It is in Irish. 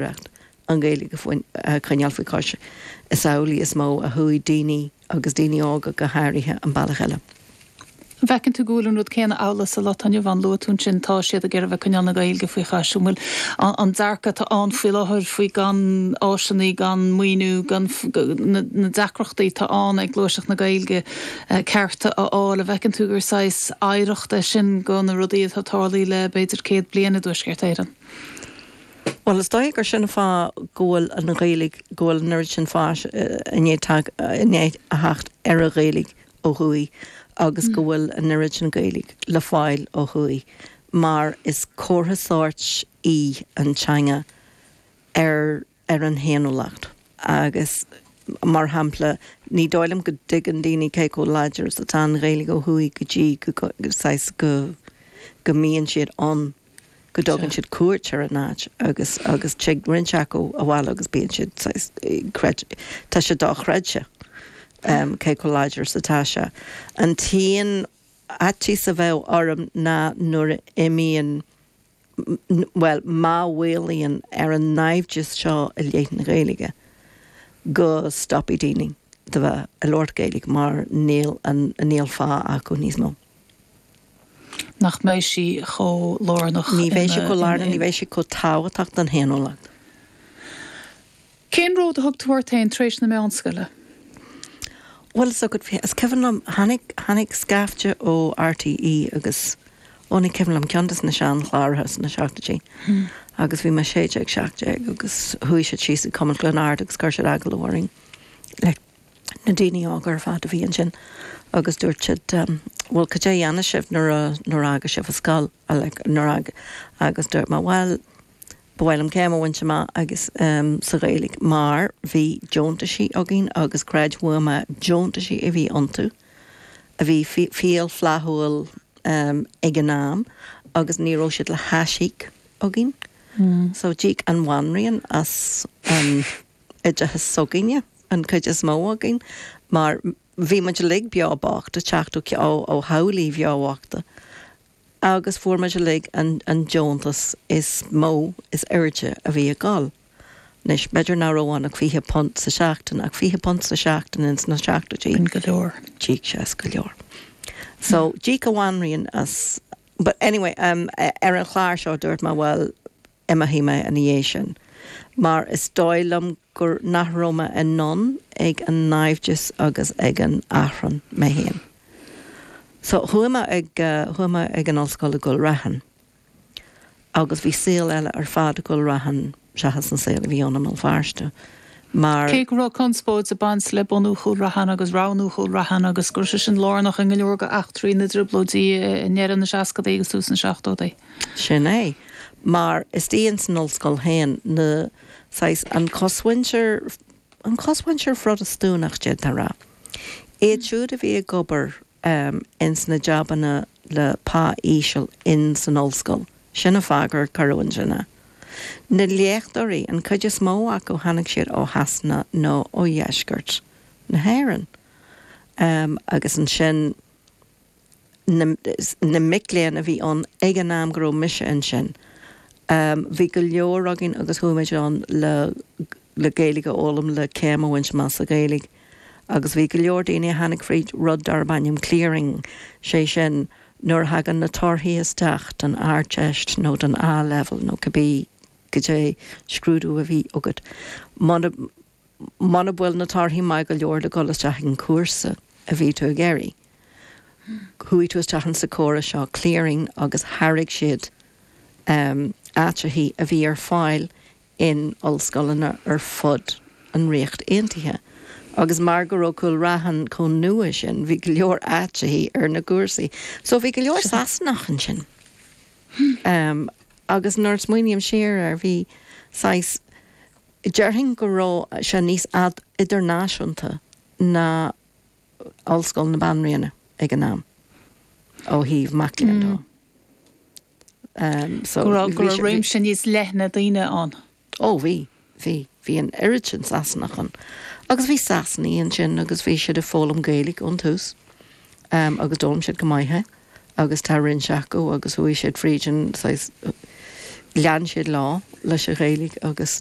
reacht, an Ghaeilge a choinneáil faoi chois, is amhlaidh is mó a chuaigh daoine, agus daoine óga go háirithe, an bealach eile. An bhfeiceann tú go bhfuil an rud céanna amhlaidh sa lá atá inniu ann? Luaigh tú ansin, tá siad ag iarraidh a bheith ag coinneáil na Gaeilge faoi chois. An bhfuil an dearcadh atá ann faoi láthair faoi gan áiseanna, gan maoiniú, na deacrachtaí atá ann ag gluaiseacht na Gaeilge cearta a fháil, an bhfeiceann tú gur saghas oidhreacht é sin de na rudaí atá ag tarlú le b'fhéidir céad bliain i dTuaisceart Éireann? Bhuel, is dóigh gur sin an fáth go bhfuil an Ghaeilge, go bhfuil an oiread sin fáis i ndiaidh a theacht ar an Ghaeilge ó thuaidh agus go bhfuil an oiread sin Gaeilge le fáil ó thuaidh mar is comhartha sóirt í an teanga ar an fhéiniúlacht agus mar shampla ní dóigh liom go dtuigeann daoine cé chomh láidir is atá an Ghaeilge ó thuaidh go dtí go, saghas, go mbíonn siad ann. go dtugann siad cuairt ar an áit agus agus tig roinnt acu abhaile agus bíonn siad, saghas, creid, tá sé dochreidte cé chomh láidir is atá sé. An t-aon fhaitíos a bheadh orm ná nuair a imíonn, bhuel, má mhaolaíonn ar an naimhdeas seo i leith na Gaeilge, go stopfaidh daoine de bheith ag labhairt Gaeilge mar níl an, níl fáth acu níos mó. nach mbeidh sí chomh lárnach Ní bheidh sí chomh lárnach, ní bheidh sí chomh tábhachtach don fhéiniúlacht. Cén ród a thug tú ort féin tar éis na meánscoile? Bhuel, tá a fhios agat féin, is cuimhin liom, tháinig, tháinig scaifte ó RTÉ agus, ó ní cuimhin liom, ceann de na seanchláracha sna seachtaidí agus bhí mé a sé déag, seacht déag agus chuaigh siad síos ag Cumann Chluain Ard agus chuir siad agallamh orainn le, na daoine óga ar fad a bhí ansin agus dúirt siad bhuel cad é a dhéanfaidh sibh nuair a, nuair a fhágfaidh sibh an scoil like nuair a agus dúirt mé bhuel ba mhaith liom céim a bhaint amach agus ehm sa Ghaeilge mar bhí deontaisí againn agus creid uaim é deontaisí a bhí iontu a bhí fial flaithiúil ehm ag an am agus ní raibh siad le haisíoc againn so d'íoc an bhanríon as an oideachas s'againne, an cuid is mó againn, mar bhí muid uilig beo bocht ag teacht ó theaghlaigh bheo bhochta agus fuair muid uilig an deontas is mó is airde a bhí ag dul. Anois, b'fhéidir nach raibh ann ach £20 sa tseachtain, ach £20 sa tseachtain ins na seachtóidí, sin go leor. D'íoc sé as go leor. So, d'íoc an bhanríon as. But anyway, ar an chlár seo dúirt mé, bhuel, D'imigh mé ina dhiaidh sin, mar is dóigh liom gur, nach raibh mé in ann ag an naimhdeas agus ag an achrann mé féin. So, chuaigh mé ag, chuaigh mé ag an ollscoil i gCúil Raithin, agus bhí saol eile ar fad i gCúil Raithin seachas an saol a bhí ann i mBéal Feirste. mar. Cé go raibh conspóid ag baint le bunú Chúil Raithin agus roghnú Chúil Raithin agus go raibh sé sin lárnach i go leor de eachtraí na dtrioblóidí i ndeireadh na seascadaí agus tús na seachtóidí. Sin é. Mar istigh ins an ollscoil féin na, saghas, an chosmhuintir, an chosmhuintir Phrotastúnach, d'fhéadfá rá. Iad siúd a bhí ag obair em, ins na jabanna le pá íseal ins an ollscoil, sin a' fáth gur cuireadh ansin é. Na léachtóirí, an cuid is mó acu tháinig siad ó Shasana nó ó dheisceart na hÉireann. Em, agus ansin na, na mic léinn a bhí ann ag an am go raibh mise ansin, em, bhí go leor againn agus chuaigh muid ann le Gaeilge a fhoghlaim, le céim a bhaint amach sa Ghaeilge. agus bhí go leor daoine a tháinig fríd rud darb ainm clearing, sé sin, nuair a thagann na torthaí isteach don Ardteist nó don A-Leibhéal nó cibé goidé scrúdú a bhí agat, muna, muna bhfuil na torthaí maith go leor le dhul isteach ag an chúrsa a bhí tú ag iarraidh, chuaigh tú isteach in sa córas seo clearing agus thairg siad, em, áiteachaí a bhí ar fáil in ollscoileanna ar fud an Ríocht Aontaithe agus mar go raibh Cúil Raithin chomh nua sin bhí go leor áiteachaí ar na cúrsaí so bhí go leor Sasanach ansin ehm agus nuair a smaoiním siar air bhí saghas déarfainn go raibh sé níos idirnáisiúnta ná Ollscoil na Banríona ag an am ó thaobh mac léinn de. go raibh réimse níos leithne daoine ann. Ó, bhí, bhí. Bhí an oiread sin Sasanach ann. Agus bhí Sasanaigh ansin agus bhí siad ag foghlaim Gaeilge ón tús agus d'fhoghlaim siad go maith é agus tá roinnt acu agus chuaigh siad fríd an saghas, lean siad leo leis an Ghaeilge agus